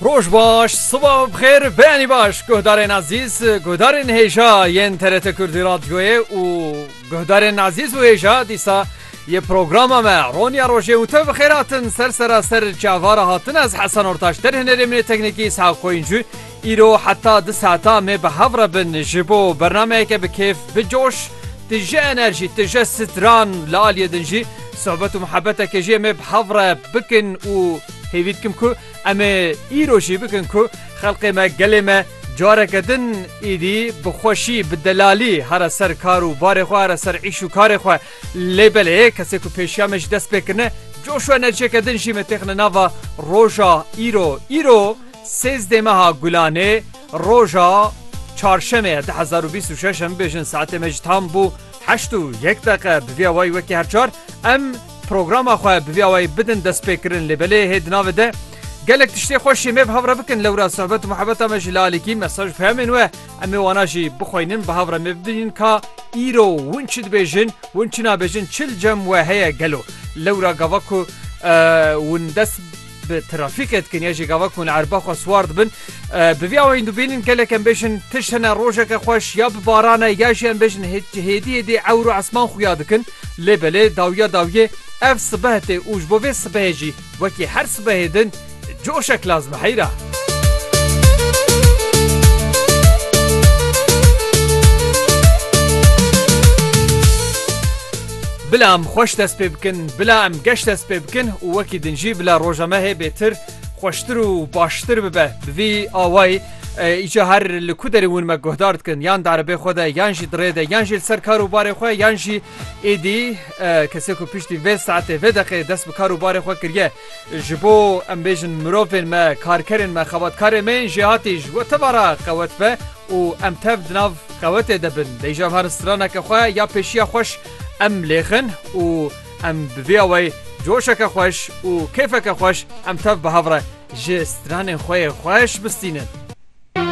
Roj baş, siba bixêr, beyanî baş guhdarên azîz, guhdarên hêja yên TRT Kurdî Radyoyê û guhdarên azîz û hêja dîsa yê programa me Ronya Rojê û te bi xêr hatin ser seraser çavara hatin ez Hesen Ortaş derhênerê min ê teknîkî Sağ Koyuncu Îro heta du saetan me bi hev re bin ji bo bernameyeke bi kêf, bi coş, tije enerjî, tije stran li aliyê din jî sohbet û muhebetekê jê me bi hev re bikin û hêvî dikim ku em ê îro jî bikin ku xelkê me, gelê me careke din êdî bi xweşî, bi delalî here ser kar û barê xwe, here ser îş û karê xwe. Lê belê kesê ku pêşiya me jî dest pê kirine coş û enerjiyeke din jî me têxine nava roja îro. Îro. Sêzdeh meha Gulanê roja Çarşemê ya du hezar û bîst û şeş em bêjin saetê me ji tam bû heşt û yek deqe bi vî awayî wekî her çar em programa xwe bi vî awayî bidin destpêkirin lê belê hê di navê de gelek tiştê xwe şêmê bi hev re bikin lewra sohbet û muhebeta me ji lalekî mesaj û peyamên we em ê wana jî bixweynin bi hev re me bibînin ka îro win çi dibêjin win çi nabêjin çil cem we heye gelo lewra gava ku win dest bi trafîkê dikin ya jî gava ku li erba xwe siwar dibin bi vî awayîn dibînin gelek em bêjin tişt hene rojeke xweş ya bi barane ya jî em bêjin hêdî hêdî ewr û esman xuya dikin lê belê dawiya dawiyê ev sibeh tê û ji bo vê sibehê jî wekî her sibehê din coşek lazim heyra. Bila em xweş dest pê bikin, bila em geş dest pê bikin û wekî din jî bila roja me hê bêtir, xweştir û baştir bibe. Bi vî awayî îcar her li ku derê hûn me guhdar dikin yan di erebê xwe de yan jî di rê de yan jî li ser kar û barê xwe yan jî êdî kesê ku piştî vê saetê vê deqê dest bi kar û barê xwe kiriye Ji bo em bêjin mirovên me, karkerên me, xebatkarên me yên jêhatî ji we teva re qewet be û em tev di nav qewetê de bin. Bêjin her straneke xwe ya pêşiya xweş em lêxin û em bi vê awayî coşeke xweş û kêfeke xweş em tev bi hev re ji stranên xwe yê xweş bistînin.